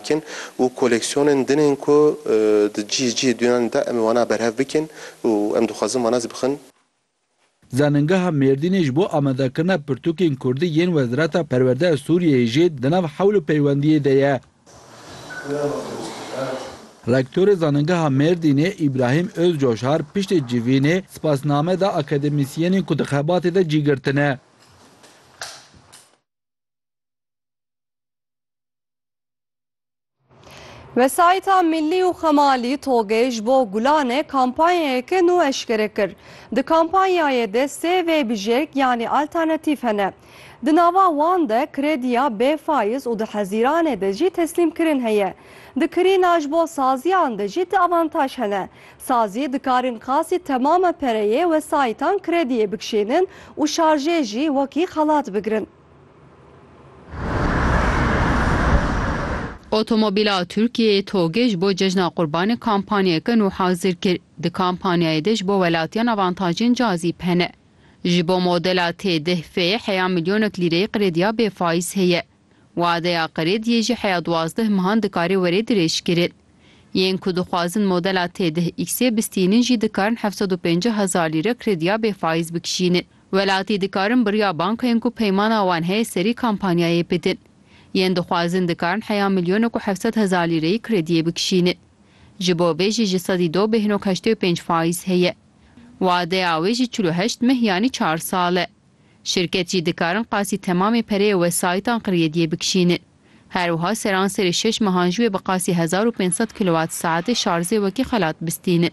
Kin û koleksiyonên din ên ku di cîh cîhê dûyanê de em ê wana berhev bikin û em dixwazin wana zî bixin. Zanîngeha Mêrdînê ji bo amadekirina pirtûkên kurdî yên Wezareta Perwerdeya Sûriyeyê jî di nav hewl û peywendiyê de ye. Rektorê Zanîngeha Mêrdînê Îbrahîm Ozcoşar piştê civînê spasname da akademîsyenên ku di xebatê de cî girtine. Wesayîta Millî û Xemalî TOG'ê ji bo Gulanê kampanyayeke nû eşkere kir. Di kampanyayê de sê vêbijêrk yanî alternatîf hene. Di nava wan de krediya bê faiz û di hezîranê de jî teslîmkirin heye. Di kirîna ji bo saziyan de jî di avantaj hene. Sazî dikarîn qasî temama pereyê wesayîtan krediyê bikişênin û şarjê jî wekî xelat bigirin. Otomobîla Tirkiyeyê TOG'ê ji bo Cejna Qurbanê kampanyayeke nû hazir kir. Di kampanyayê de ji bo welatiyan avantajên cazîb hene. Ji bo modela T-deh F heya milyonek lîreyê qirêdiya bêfayîz heye. Wadeya qirêdiyê jî heya duwazdeh mehan dikare were dirêjkirin. Yên ku dixwazin modela T-deh X'ê bistînin jî dikarin heft sed û pêncî hezar lîre qirêdiya bêfayîz bikişînin. Welatî dikarin birya bankayên ku peymana wan heye serî kampanyayê bidin. Yên dixwazin dikarin heya milyonek û hevsed hezar lîreyî krediyê bikişînin. Ji bo vê jî ji sedî do bêhnok heştê û pênc fayîz heye. Wadeya wê jî çil û heşt meh yanî çar sal e. Şirket jî dikarin qasî temamê pereyê wesayîtan krediyê bikişînin. Her wiha seranserê şeş mehan ji wê bi qasî hezar û pênc sed kilowat saetê şarzê wekî xelat bistînin.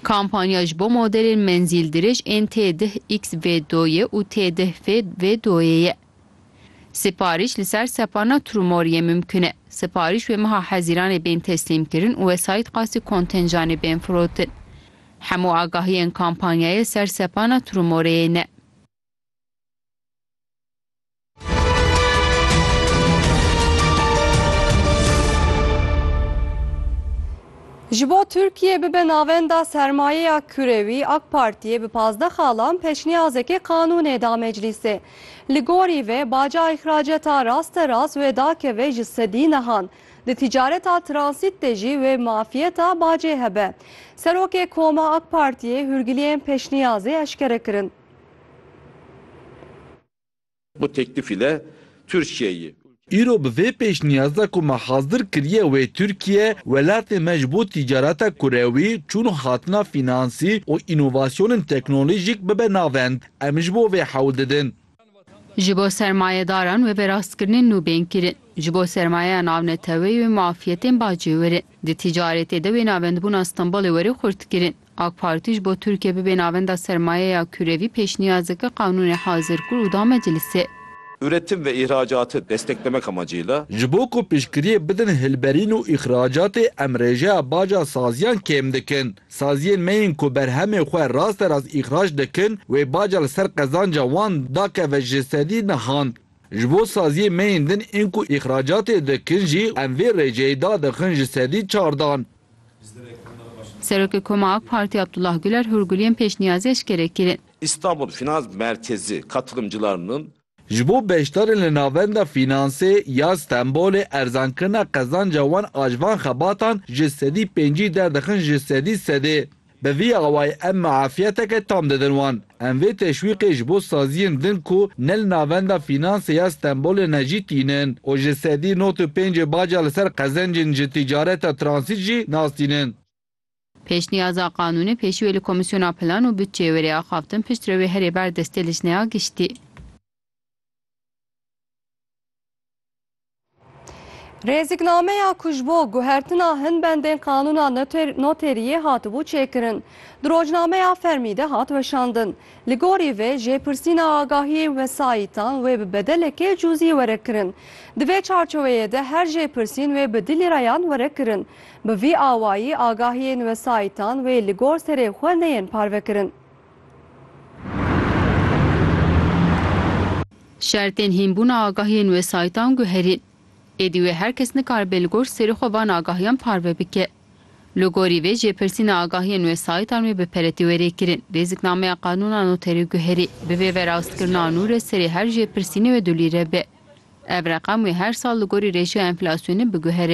Kampanya ji bo modelên menzîldirêj ên T-dih-XV-doyê û T-dih-FV-doyê ye. Siparîş li ser sepana Trumori'ê mimkun e. Siparîş wê meha hezîranê bên teslîmkirin û wesayît qasî kontenjanê bên firotin. Hemû agahiyên kampanyayê ser sepana Trumori'ê ne. Ji bo Tirkiyê bibe navenda sermayeya kurewî, AK Partiyê bi pazdeh xalan peşniyazekê qanûnê da meclîsê. Li gorî vê baca îxraceta rasterast wê dakeve ji sedî nihan. Di tîcareta transît de jî wê mafiyeta bacê hebe. Serokê Koma AK Partiyê hûrgiliyên peşniyazê eşkere kirin. Bu teklifî de Tirkiyeyî. Îro bi vê pêşniyaz de ku me hazdir kiriye wê Tirkiye, welatê me ji bo tîcareta kurewî, çûn û hatina fînansî û înovasyonên teknolojîk bibe navend. Em ji bo vê hewl didin. Ji bo sermayedaran wê bi rastkirinên nû bên kirin. Ji bo sermayeya navneteweyî wê muafiyetên bacê werin. Di tîcaretê de wê navendbûna Stenbolê werê xurt kirin. AK Partî ji bo Tirkiye bibe navenda sermayeya kurevî pêşniyaz dike qanûnê hazir kir û da meclisê. Üretim ve ihracatı desteklemek amacıyla. Ji bo ku piştgiriyê bidin hilberîn û îxracatê em rêjeya baca saziyan kêm dikin. Saziyên me yên ku berhemê xwe rasterast îxrac dikin wê baca li ser qezanca wan dakeve ji sedî nihan. Ji bo saziyên me yên din ên ku îxracatê dikin jî em vê rêceyê dadixin ji sedî çardan. Serokê Koma AK Partî Abdullah Guler hûrguliyên pêşniyazî eşkere kirin. Îstanbul Finans Merkezi katılımcılarının, Ji bo beşdarên li Navenda Fînansê ya Stenbolê erzankirina qezanca wan a ji van xebatan ji sedî pêncî derdixin ji sedî sedê. Bi vî awayî em muafiyeteke tam didin wan. Em vê teşwîqê ji bo saziyên din ku ne li Navenda Fînansê ya Stenbolê ne jî tînin û ji sedî not û pêncê baca li ser qezencên ji tîcareta transît jî nas tînin. Pêşniyaza qanûnê pêşî wê li Komîsyona Plan û Budçeyê were axaftin pişt re wê herê ber destê lijneya giştî. Rêzîknameya ku ji bo guhertina hin bendên qanûna noteriyê hatibû çêkirin, di rojnameya fermî de hat weşandin. Li gorî vê jêpirsîna agahiyên wesayîtan wê bi bedelekê cûzî were kirin. Di vê çarçoweyê de her jêpirsîn wê bi du lîreyan were kirin. Bi vî awayî agahiyên wesayîtan wê li gor serê xwe neyên parvekirin. Şertên hînbûna agahiyên wesayîtan guherîn. Êdî wê her kes nikaribe li gor serê xwe van agahiyan parve bike. Li gorî vê jêpirsîna agahiyên wesayîtan wê bi peretî were kirin, rêziknameya qanûna noterê guherî, bi vê verawstkirina nû re serê her jêpirsînê wê du lîre be. Ev reqem wê her sal li gorî rêşeya enflasyonê biguhere.